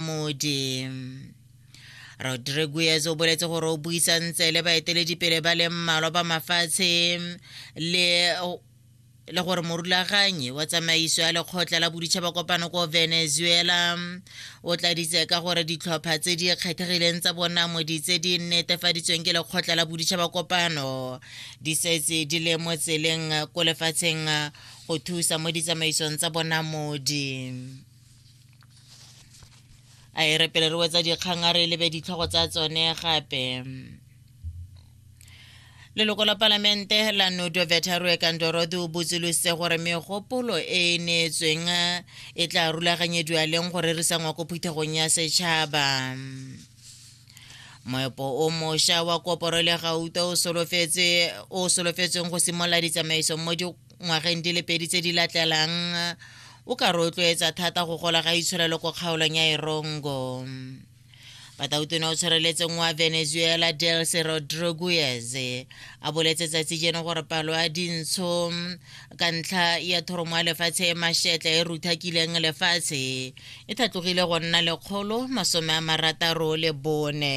modi rodriguez o boletse gore o buisantse le baeteledipele ba le mmalwa ba mafatshe le le gore morulaganyi wa tsamaiso ya lekgotla la boditšhaba kopano ko venezuela o tladitse ka gore ditlhopha tse di kgethegileng tsa bonamodi tse di netefaditsweng ke lekgotla la boditšhaba kopano di setse di le mo tseleng ko lefatsheng go thusa mo ditsamaisong tsa bonamodi a e repele re wetsa dikgang a re lebe ditlhogo tsa tsone gape leloko la palamente la nodo vetarue kandorodi o botsolositse gore megopolo e e neetsweng e tla rulaganyediwa leng go rerisa ngwa ko phuthegong ya setšhaba moepo o mošwa wa koporo le gauta o solofetsweng go simolola ditsamaiso mo ngwageng di le pedi tse di latlelang o ka rotloetsa thata go gola ga itshwarelo ko kgaolong ya erongo batautone o tshwareletseng wa venezuela delce rodriguez a boletse tsatsi jeno gore palo ya dintsho ka ntlha ya thoromo ya lefatshe e mashetla e ruthakileng lefatshe e thatlogile go nna lekgolo masome a marataro le bone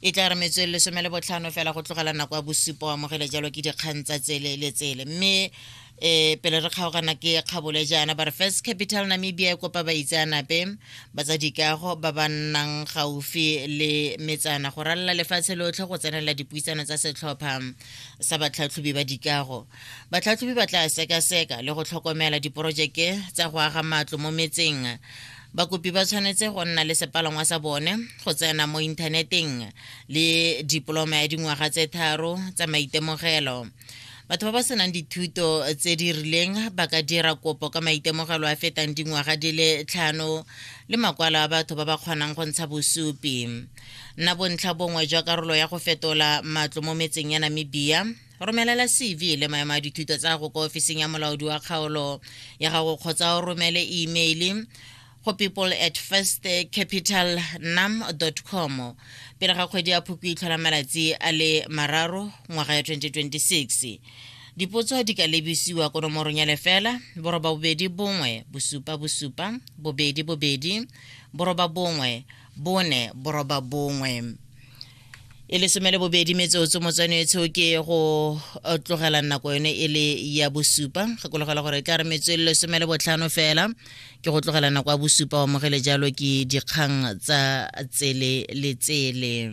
e tla re metswedi lesome le botlhano fela go tlogela nako ya bosupa o amogele jalo ke dikgang tsa tsele le tsele mme e pele re kgaogana ke kgabole jaana ba re first capital namibia e kopa baitseanape ba tsa dikago ba ba nnang gaufi le metsana go ralala lefatshe lotlhe go tsenela dipuisano tsa setlhopha sa batlhatlhobi ba dikago batlhatlhobi ba tla sekaseka le go tlhokomela diporojeke tsa go aga matlo mo metseng bakopi ba tshwanetse go nna le sepalangwa sa bone go tsena mo inthaneteng le dipoloma ya dingwaga tse tharo tsa maitemogelo batho ba ba senang dithuto tse di rileng ba ka dira kopo ka maitemogelo a fetang dingwaga di le tlhano le makwalo a batho ba ba kgonang go ntsha bosupi nna bontlha bongwe jwa karolo ya go fetola matlo mo metseng ya namibia romelela cv le maemo a dithuto tsa go kwa ofising ya molaodi wa kgaolo ya gago kgotsa o romele email go people at first capital nam com pele ga kgwedi ya phoko itlhola malatsi a le mararo ngwaga ya 2026 dipotso di ka lebisiwa ko nomorong ya lefela boroba bobedi bongwe bosupa bosupa bobedi bobedi boroba bongwe bone boroba bongwe e le some le bobedi metsotso motswanetsho ke go eh, tlogela nako yone e le ya bosupa gakologela gore e tla re metswe le some le botlhano fela ke go tlogela nako ya bosupa wa mogele jalo ke dikgang tsa tsele le tsele